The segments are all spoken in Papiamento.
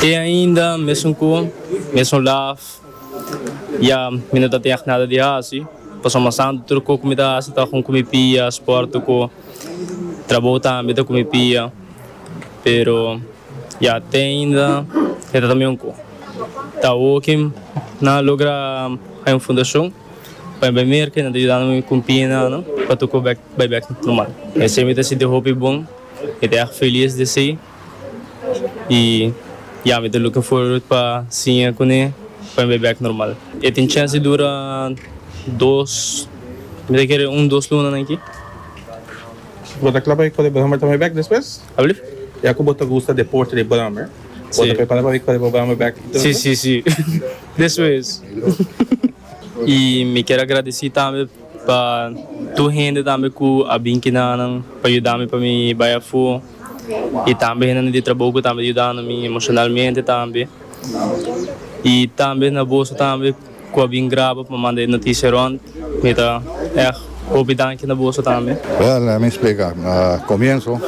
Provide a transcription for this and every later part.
Te ainda mesun cu mesun laf ya mi no ta teg nada di haci, pasobra mas anto tur cu cu mi ta haci ta con cu mi pia, sport cu trabou tambe ta cu mi pia, pero ya te ainda e ta tambien un cu. Ta awo cu nan a logra hay un fundacion pa bay merca y nan ta yudando mi cu mi pia y nana pa tur cu bay bek normal, esey mi ta sinti hopi bon, mi ta erg feliz di esey. y ya mi ta looking forward pa siña cune pa mi bay back normal. E tin chance di dura dos mi ta kere un dos lunanan aki. Bo ta cla pa bay cole Brahmer ta bay back despues? Alblief? Ya cu bo ta gusta deporte di Brahmer bo ta prepara pa bay cole bo Brahmer back y todo eso? Si si si despues y mi ker agradeci tambe pa tur hende tambe cu a bin kina nan pa yuda mi pa mi bay afo. y tambe hende nan di trabou cu tambe ta yudando mi emocionalmente tambe y tambe na boso tambe cu a bin graba pa manda e noticia rond mi ta echt hopi danki na boso tambe. Well lemme mi splica na comienso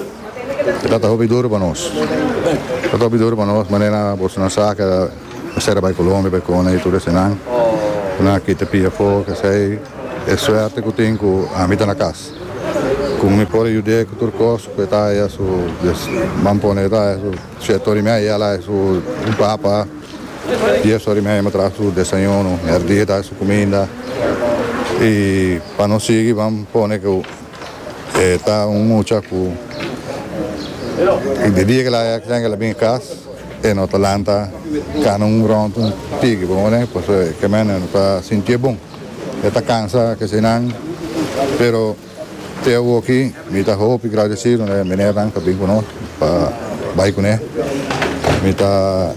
e tabata hopi duro pa nos e tabata hopi duro pa nos manera boso nan sa ke mester a bay Colombia bay cona y tur esenan nan a kita pia afo kesey e suerte cu tin cu ami ta na cas. Como mi por yud'é cu tur cos cu e ta haya su man pone e ta haya su shèt ora mi a haya la e su papa, dies ora mi a haya mi a traha su desayuno, mèrdia e ta haya su cuminda y pa no sigui ban pone cu e ta un mucha cu e dia cu el a haya ksai cu el a bini cas e no ta lanta cana un rond un tigi, bo comprende? Pasobra e caminda e no ta sinti'é bon. E ta cansa kecenan, pero te awoki mi ta hopi gradecido na e menernan pa bin cu nos pa bay cune. Mi ta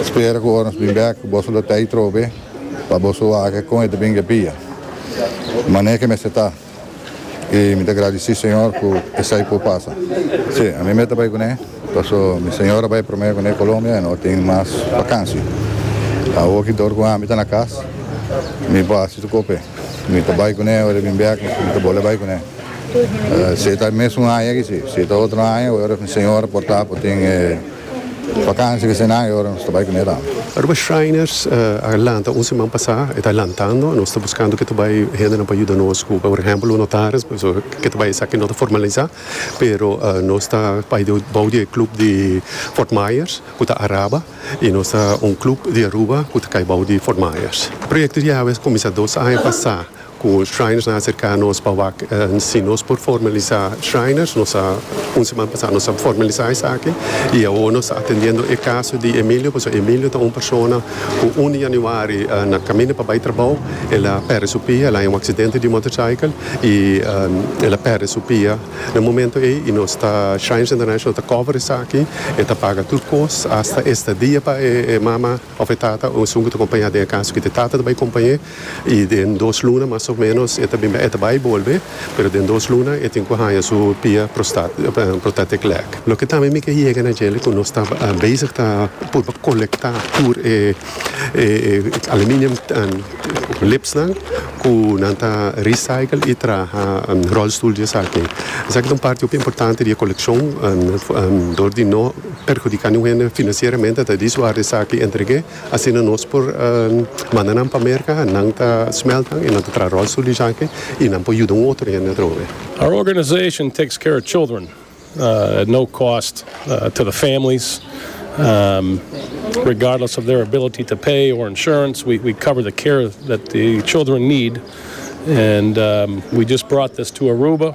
spera cu ora nos bin bek boso lo tey trobe pa boso wak e con e ta bin get pia. Mane ke mester ta. I mi ta gradisí Señor ku esei por pasa. Sí, ami mester bai kuné, paso mi señora bai promé kuné Colombia i no tin mas bakansi. Awor ki dor ku ami ta na kas, mi por hasi su kope. Mi ta bai kuné ora e bin bèk, mi ta bole bai kuné. Si ta e mes un aña aki si, si ta otro aña, ora mi señora por ta, por tin e. Vakansia di fin di aña ora nos ta bai ku mi ran. Aruba Shriners a lanta un siman pasá, e ta lantando. Nos ta buskando ke ta bai hendenan pa yuda nos ku por ehèmpel un notaris, pasobra ke ta bai esaki no ta formalisá, pero nos ta bai bou di e klub di Fort Myers ku ta Araba i nos ta un klub di Aruba ku ta kai bou di Fort Myers. E proyekto di Yahweh a kuminsá dos aña pasá. Cu Shriners na acerca nos pa wak si nos por formalisa Shriners. Nos a, un seman pasa nos a formalisa esaki y awo nos ta atendiendo e caso di Emilio, pasobra Emilio ta un persona cu un di januari na caminda pa bay trabao el a perde su pia, el haña un accidente di motorcycle y el a perde su pia na momento ey y nos ta, Shriners International ta cover esaki, e ta paga tur cos, hasta estadia pa e mama. Òf e tata o esun ku ta kompañá den e kas ku e tata ta bai kompañ'é i den dos luna mas o ménos e ta bin bai. E ta bai bolbe, pero den dos luna e tin ku haña su pia prostat prothetic leg. Loke tambe mi ke yega na djele ku nos ta bezig ta purba kolektá tur e aluminium lipsnan ku nan ta recycle i traha rolstoel di esaki. Esaki ta un parti hopi importante di e kolekshon dor di no perhudiká niun hende finansieramente ta di su ar esaki entreg'é asina nos por manda nan pa Merka nan ta smèltnan i nan ta traha ròlstul di esaki i nan por yuda un otro hende atrobe. Our organization takes care of children at no cost to the families regardless of their ability to pay or insurance we cover the care that the children need and we just brought this to Aruba.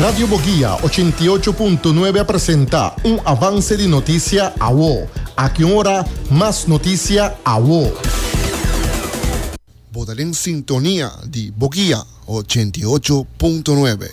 Radio Boguia ochenta i ocho punto nuebe a presenta un avance di notisia awo. Aki un ora mas notisia awo. Bo ta den sintonia di Boguia ochenta i ocho punto nuebe.